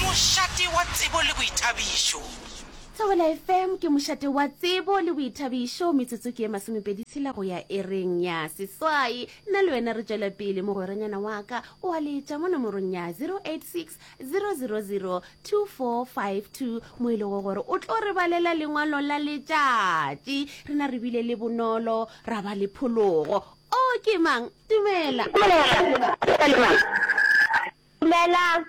Mošate wa tsebo le boithabišo. Thobela FM ke mošate wa tsebo le boithabišo, metsotso ke e masomepedi tshela go ya ereng ya seswai. Nna le wena re tšwela pele, mogweranyana wa ka o a letša mo nomorong ya 086 000 2452 mo e lego gore o tlo re balela lengwalo la letšatši. Rena re bile le bonolo ra ba le phologo. O ke mang? Dumela. Dumela. Ke Palema. Dumelang.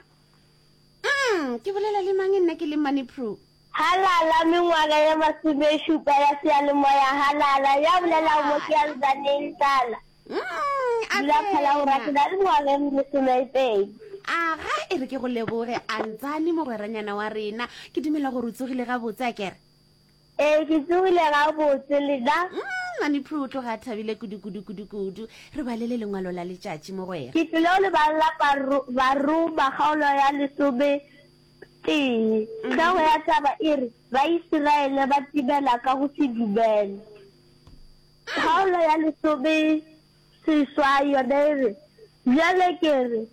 Umm, ke bolela le mang nna ke le Mmane Pru? Halala, mengwaga ye masomešupa ya seyalemoya Halala. Ya bolelago mo ke ya Nzaneng, Tlala. Umm, a Dula tsena. phala go rake na le mengwaga e mesomeipedi. Aga, e re ke go leboge, a Nzane mogweranyana wa rena. Ke dumela gore o tsogile gabotse, a kere? Ee, ke tsogile gabotse le na? Mm, mami Prue o tloga a thabile kudu-kudu-kudu-kudu. Re balele lengwalo la letšatši, mogwera. Ke tlile go le balla Baru, Baruma kgaolo ya lesome tee. Tlhogo ya taba e re, Baisiraele ba timela ka go se dumele. Kgaolo ya lesome seswai yona e re, Bjale ke re,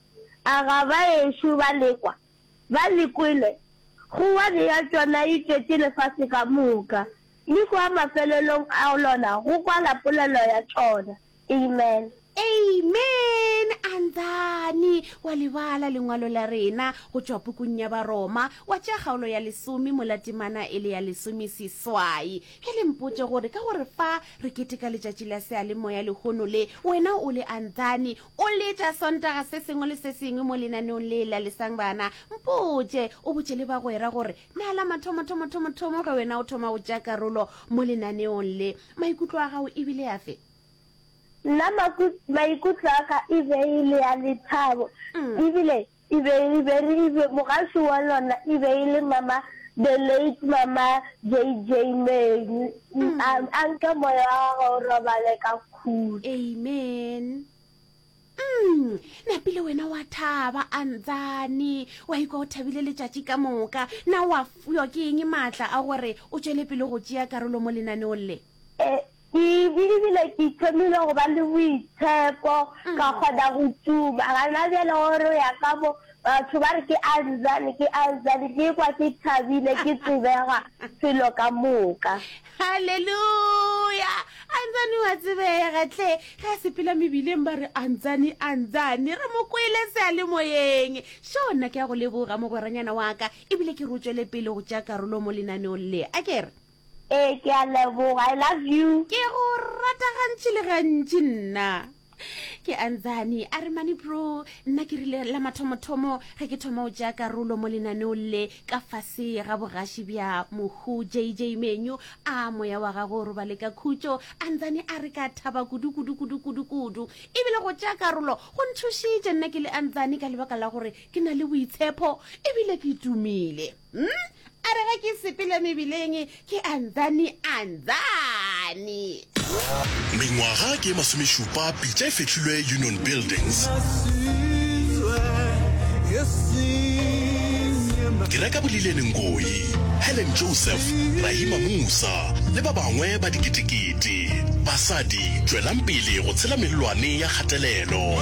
a ga baešo ba lekwa? Ba le kwele, go wa bea tšona e tšetše lefase ka moka, le kua mafelelong a lona go kwala polelo ya tšona. Amen. Amen! A nthane wa le bala lengwalo la rena go tšwa pukung ya Baroma, wa tšea kgaolo ya lesome mola temana e le ya lesomeseswai? Ke le mpotše gore ka gore fa re keteka letšatši la seyalemoya lehono le, wena o le a nthane, O letša Sontaga se sengwe le se sengwe mo lenaneong le lalisang bana? Mpotše, o botše le bagwera gore, Na la mathomothomothomothomo ge wena o thoma go tšea karolo mo lenaneong le, maikutlo a gago e bile afe? Nna maikutlo a ka e be e le a lethabo e bile E be e be re e be mogaši wa lona e be e le mama the late mama JJ Menu. Mm. A, a nke moya wa gagwe o robale ka khutso. Amen. Mm, napile wena wa thaba a ntsane wa ikwa o thabile letšatši ka moka na wa fuywa ke eng maatla a gore o tšwele pele go tšea karolo mo lenaneong le? E, Ke be ebile ke thomile go ba le boitshepo, ka kgona go tuma. Gana bjale go re o ya ka mo, batho ba re ke Anzani, ke Anzani. Ke kwa ke thabile, ke tsebega felo ka moka. Haleluya! Anzani wa tsebega tle. Ge a sepela mebileng ba re Anzani, Anzani. Re mo kwele sealemoyeng. Šo nna ke ya go leboga mogweranyana wa ka ebile ke re o tšwele pele go tšea karolo mo lenaneong le. A ke re? Ee, ke a leboga. I love you. Ke go rata gantši le gantši nna. Ke Anzani. A re mane bro, nna ke rile la mathomothomo ge ke thoma o tšea karolo mo lenaneo le ka fase ga bogaši bja mohu JJ Menyu, a moya wa gago o robale ka khutšo. Anzani a re ka thaba kudu kudu kudu kudu kudu. E bile go tšea karolo go nthušitše nna ke le Anzani ka lebaka la gore ke na le boitshepho e bile ke tumile. Hmm? A re ge ke sepele mebileng ke andhani andhani. Mengwaga ke e masomešupa pitša e fehlilwe Union Buildings. Ke reka Bolileni Ngoyi, Helen Joseph, Rahima Musa le ba bangwe ba diketekete. Basadi, tšwelang pele go tshela melelwane ya kgatelelo.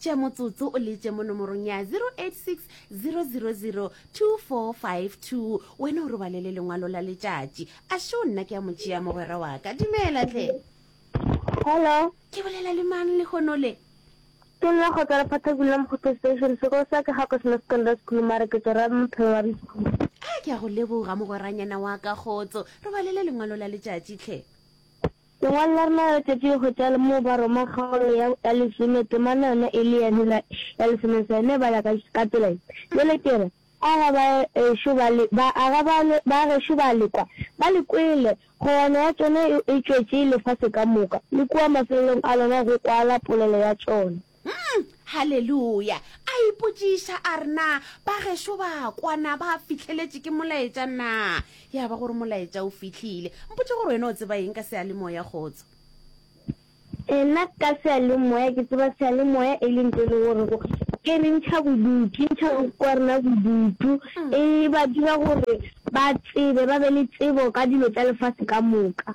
tše motsotso o letse mo nomorong ya 0860002452 wena o robalele lengwalo la letšatši a šo nna ke ya motšea mogwera wa ka dumela tle hello ke bolela le mang le kgono le ke nna go tswa lephathakong la mokgotho station sekolo sa ke gako sena secondary school mare ke tsora mophelo wa bischool a ke ya go leboga mogweranyana wa ka kgotso robalele lengwalo la letšatši tlhe Lengwalo la rena la letšatši le hwetša le mo ba roma kgaolo ya ya lesome temana yona e le ya hela ya lesome sa yona e bala ka ka tsela ye, Bjale ke re, aga ba ešo ba le ba aga ba le ba gešo ba le kwa, ba le kwele, kgogwana ya tšona e e tšwetše lefase ka moka, le kua mafelelong a lona go kwala polelo ya tšona. Umm, haleluya! A ipotšiša a re, Na bagešo ba kwa na ba fihleletše ke molaetša na? Ya ba gore molaetša o fihlile. Mpotše gore wena o tseba eng ka seyalemoya, kgotso? Ee, nna ka seyalemoya ke tseba seyalemoya e le ntho e le gore go e re ntšha bodutu, e ntšha bodutu wa rena bodutu, e ba dira gore ba tsebe, ba be le tsebo ka dilo tša lefase ka moka.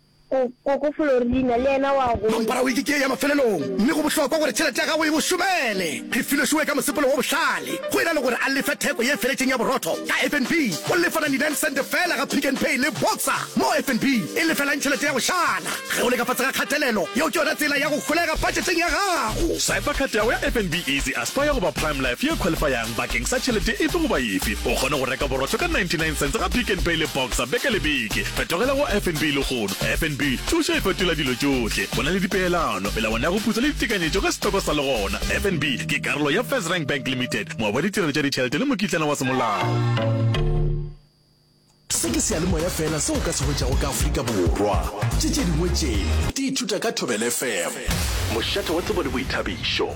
Koko Florina le yena wa gola. Kampara o ikitše ya mafelelong, mme go bohlokwa gore tšhelete ya gago e mo šomele. Re file Sue ka mosepelo wo bohlale, go e na le gore a lefe theko ye feletšeng ya borotho ka FNB. O lefa 99 sente feela ga Pick n Pay le Boxer, mo FNB e lefelang tšhelete ya go šala. Ge o le ka fase ga kgatelelo, yeo ke yona tsela ya go holega patšheteng ya gago. Swipa khat ya go ya FNB Easy Aspire goba Prime Life ye khwalifayang. Bakeng sa tšhelete efe goba efe, o kgone go reka borotho ka 99 cents ga Pick n Pay le Boxer beke le beke. Fetogela go FNB lehono. FNB, thušo e fetola dilo tšohle. Go na le dipeelano, melawana ya go putsa le ditekanyetšo ka setoko sa legona. FNB ke karolo ya FirstRand Bank Limited, moabi wa ditirelo tša ditšhelete le mokitlana wa semolao. Se ke seyalemoya fela se o ka se hwetšago ka Afrika Borwa. Tše tše dingwe tše di ithuta ka Thobela FM. Mošate wa tsebo le boithabišo.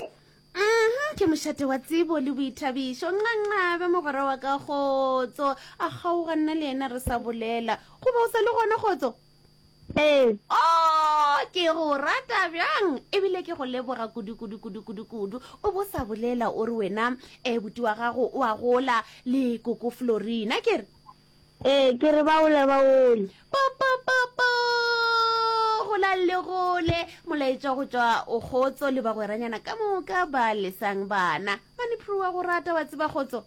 Uhmm ke mošate wa tsebo le boithabišo nqanqabe mogwera wa ka kgotso a kgaoga nna le yena re sa bolela goba o sa le gona kgotso Ee. Oh ke go rata bjang ebile ke go leboga kudu kudu kudu kudu kudu o bo sa bolela o re wena eh buti wa gago o a gola le koko Florina ke re Ee, ke re ba ole ba ole. Popopopo! Go la le gole, molaetša go tšwa o kgotso le bagweranyana ka moka ba lesang bana. Mane Prue wa go rata wa tseba kgotso.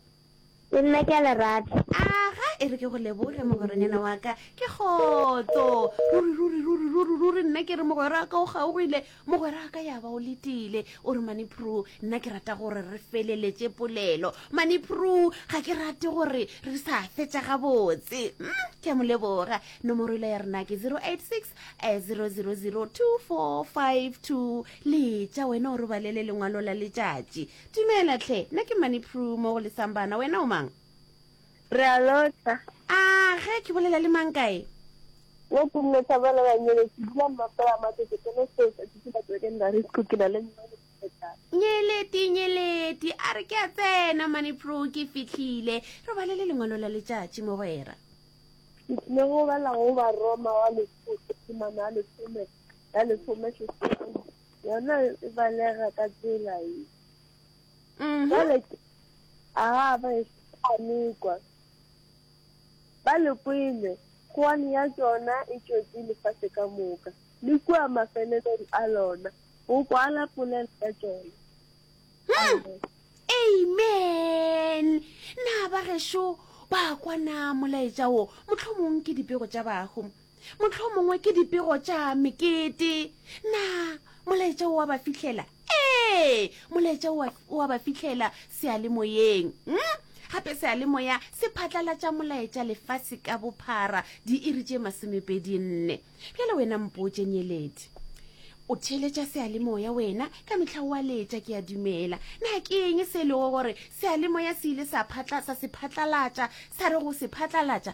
Le nna ke a le rata. Aga, e re ke go leboge mogweranyana wa ka. Ke kgotso. Ruri, ruri, ruri, ruri, ruri, nna ke re mogwera ka o kgaogile. Mogweraka ya ba o letile, o re, Mani Prue, nna ke rata gore re feleletše polelo. Mani Prue, ga ke rate gore re sa fetša gabotse. Mm, ke a mo leboga. Nomoro ile ya rena ke 086 eh, 0002452. Letša, wena o re balele lengwalo la letšatši. Dumela tlhe, nna ke Mani Prue mo go lesang bana, wena o mang? Re a lota. A ge ke bolela le mang kae? Yo ke nne sa bona ba nyele ke dula mmoto wa matete ke le se sa tšitsi ba tsweke nna re sku ke na le nna le tšeta. Nyeleti nyeleti a re ke a tsena mane pro ke fitlhile re bale le lengwalo la letšatši mogwera. Ke tlile go bala go ba Roma wa lesotho temana ya lesome ya lesome seswai yona e balega ka tsela e. Mhm. Jwale ke aha ba e amekwa. Ba le kwele, khuane ya tšona e tšwetše lefase ka moka, le kua mafelelong a lona, go kwala polelo ya tšona. Amen. Amen. Na ba gešo ba kwa na molaetša wo mohlomong ke dipego tša bahu? Mohlomongwe ke dipego tša mekete. Na molaetša o wa ba fihlela? Ee, molaetša o wa ba fihlela seyalemoyeng. Hm? Gape seyalemoya se phatlalatša molaetša lefase ka bophara diiri tše masomepedi nne. Bjale wena mpotše, nyeledi. O theeletša seyalemoya wena, ka mehla o a leetša, ke a dumela. Na ke eng se e lego gore seyalemoya se ile sa phatla, sa se phatlalatša, sa re go se phatlalatša?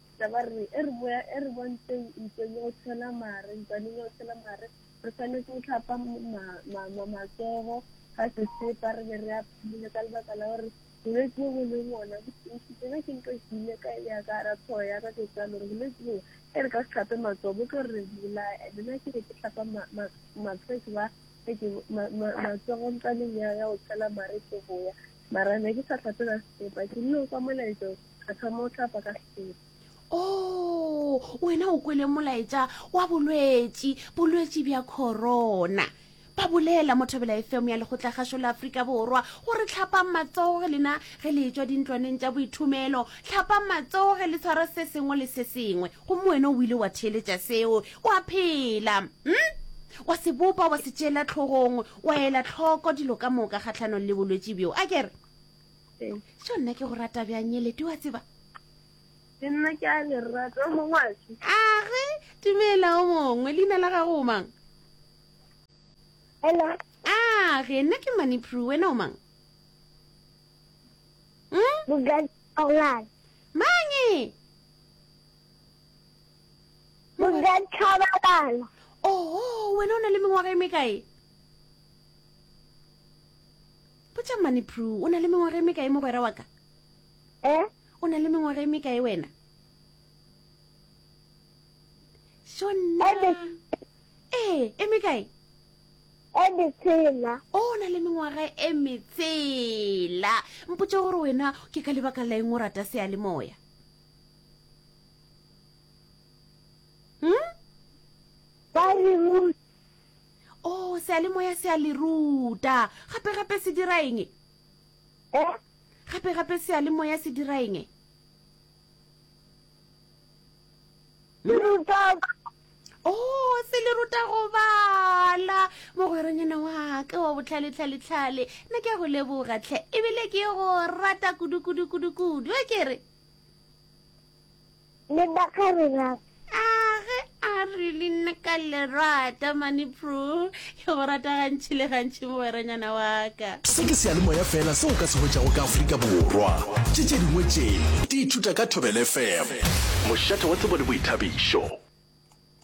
Tla ba re, e re boya, e re bontšeng ntweng ya go tshela mare, ntwaneng ya go tshela mare, re swanetse go tlhapa matsogo ka sesepa, re be re a phumile ka lebaka la gore bolwetse bo bo leng ona botišitse ge ke nka kile ka ya ka ra tlhogo ya ka ke tsa lore bolwetse bo e re ka se tlhape matsogo bo tlo re bolaya and nna ke be ke tlhapa matlhwetse ba matsogo ntsaneng ya go tshela mare ke boya mara ne ke sa tlhape ka sesepa ke nne o ka molaetso ka tla mo tlapa ka sepe o wena o kwele molaetša wa bolwetši bolwetši bja corona ba bolela mothobela efemo ya lekgotlagašo la aforika borwa gore tlhapang matsoge lena ge le etswa dintlwaneng tša boithomelo tlhapang matsoge le tshwara se sengwe le se sengwe gomme wena o ile wa theeletša seo wa phela m hmm? wa se bopa wa se tšeela tlhogong wa ela tlhoko dilo ka moka kgatlhanong le bolwetši bjo a kere so nna ke go rata bjang nyelete wa tseba le nna ke a le rata o mongwe a se age dumela o mongwe leina la gago o mang hello age nna ke mani pru wena o mang hmm? bogadi aolane mange bogadi tlhabalala oho wena o na le mengwaga e mekae Potša Mmane Prue, o na le mengwaga e mekae mogwera wa ka? Eh? O na le mengwaga e mekae wena? Shonna. Ebe. Ee, e mekae? E metsela. O na le mengwaga e metsela. Mpotša gore wena ke ka lebaka la eng o rata seyalemoya? Oo, Seyalemoya se a le ruta. Gape-gape se dira eng? Go? Gape-gape Seyalemoya se dira eng? Le ruta. Oo, se le ruta go bala. Mogweronyana wa ka wa botlhale-tlhale-tlhale, nna ke a go leboga tlhe, ebile ke go rata kudu-kudu-kudu-kudu, e ke re? Le nna ka re rata. A ge a re le nna ka le rata mane pro ke go rata gantši le gantši mogweranyana wa ka. Se ke seyalemoya fela se o ka se hwetšago ka Afrika Borwa. Tše tše dingwe tše di ithuta ka Thobela FM. Mošate wa tsebo le boithabišo.